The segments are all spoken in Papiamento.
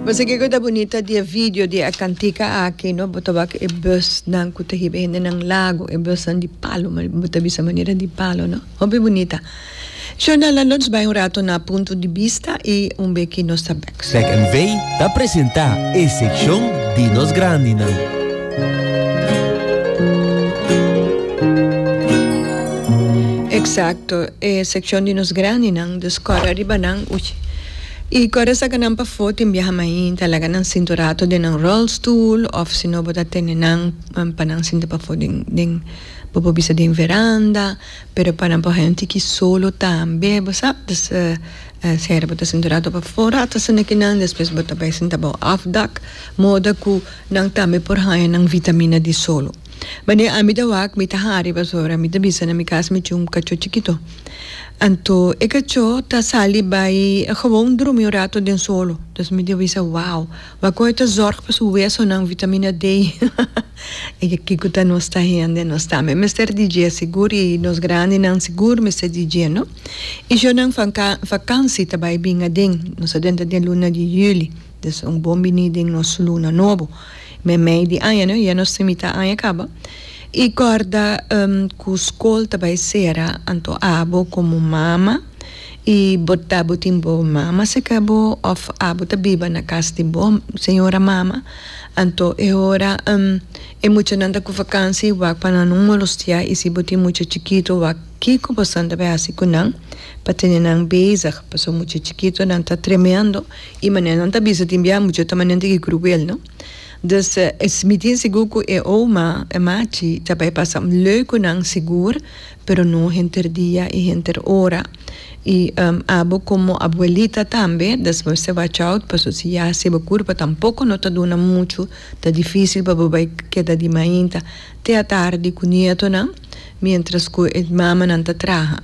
Pasa kiko ta bunita di e video di e kantika aki no bo ta wak e busnan ku ta hiba hendenan lagu e busnan di palo bo ta bisa manera di palo no hopi bunita Shonda la nos bai un rato na punto di bista i un be ki nos ta bek so. Back and Bay ta presenta e sekshon di nos grandinan. Eksakto e sekshon di nos grandinan dus kòrè riba nan uchi. I kor e saka nan pafó tin biaha mainta laga nan sinto rato den nan rolstoel of si no bo ta tene nan pa nan sinta pafó den bo por bisa den veranda pero pa nan por haña un tiki solo tambe bo sa dus si aver bo ta sinto rato pafó rato asina ki nan despues bo ta bai sinta bou afdak moda ku nan tambe por haña nan vitamina di solo. Wanneer ami ta wak mi ta hari pasobra mi ta bisa na mi casa mi tin un cachó chikito. Anto e cachó ta sali bai gewoon drumi un rato den suolo. Entonces mi ta bisa wow, wak cu e ta zorg pa su wesonan, vitamina D hahaha. Ey kico ta nos ta hende, nos tambe mester di dje sigur y nos grandinan sigur mester di dje no. Y shornan van vakantie ta bai bin aden, nos aden ta den luna di juli. Des un bon bini den nos luna nobo. Meimei di aña no, ya nos tin mita aña kaba i kòrda ku skol ta bai sera anto abo komo mama i bo ta bo tin bo mama serka bo òf abo ta biba na kas di bo señora mama anto e ora e muchanan ta ku vakansia i wak pa nan no molostiá i si bo tin mucha chikitu wak kiko bosnan ta bai hasi ku nan pa tene nan bezig pasobra mucha chikitunan ta tremendo I manera nan ta bisa tin bia mucha tamanente ki kruel no. Dus es mi tin sigur ku e oma, e machi, ta bai pasa un leu ku nan sigur, pero no henter dia i henter ora. I abo komo abuelita tambe dus mester watch out paso si ya si bo kurpa tampoko no ta duna muchu ta difisil pa bo bai keda di mainta te a tardi ku nietonan Mientras cu e mamanan ta traha.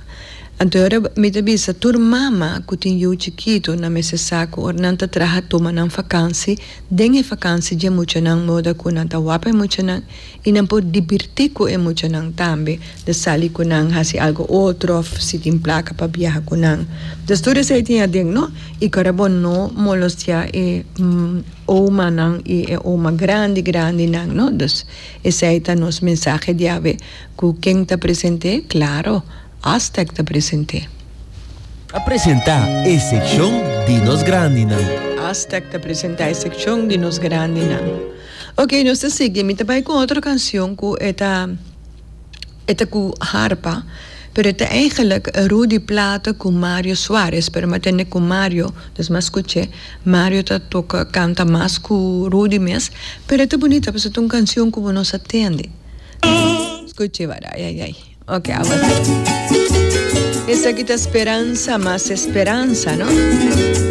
Anto ora mi ta bisa tur mama cu tin yu chikito nan mester sa cu ora nan ta traha tuma nan fakansi, den e fakansi dje muchanan moda cu nan ta wak pa e muchanan y nan por dibirti cu e muchanan tambe, ta sali cu nan, haci algo otro of si tin placa pa biaha cu nan. Dus tur esey tin aden, no? Y ora bo no molostia e omanan y e oma grandi grandinan, no? Dus. Esei ta nos mensahe di Yahwe, Cu ken ta presente? Claro, Aztec ta presente! Ta presenta e seccion di nos grandinan. Aztec ta presenta e seccion di nos grandinan. Ok, nos ta sigui. Mi ta bay cu otro cancion cu e ta. E ta cu harpa, pero e ta eigenlijk Rudy Plata cu Mario Suarez, pero mi a tende cu Mario, dus mi a scuche, Mario ta toca canta mas cu Rudy mes, pero e ta bunita pasobra ta un cancion cu bo no sa tende. Scuche wada, ay ay ay. Ok, awa si. Esaki ta speransa mas esperansa, no?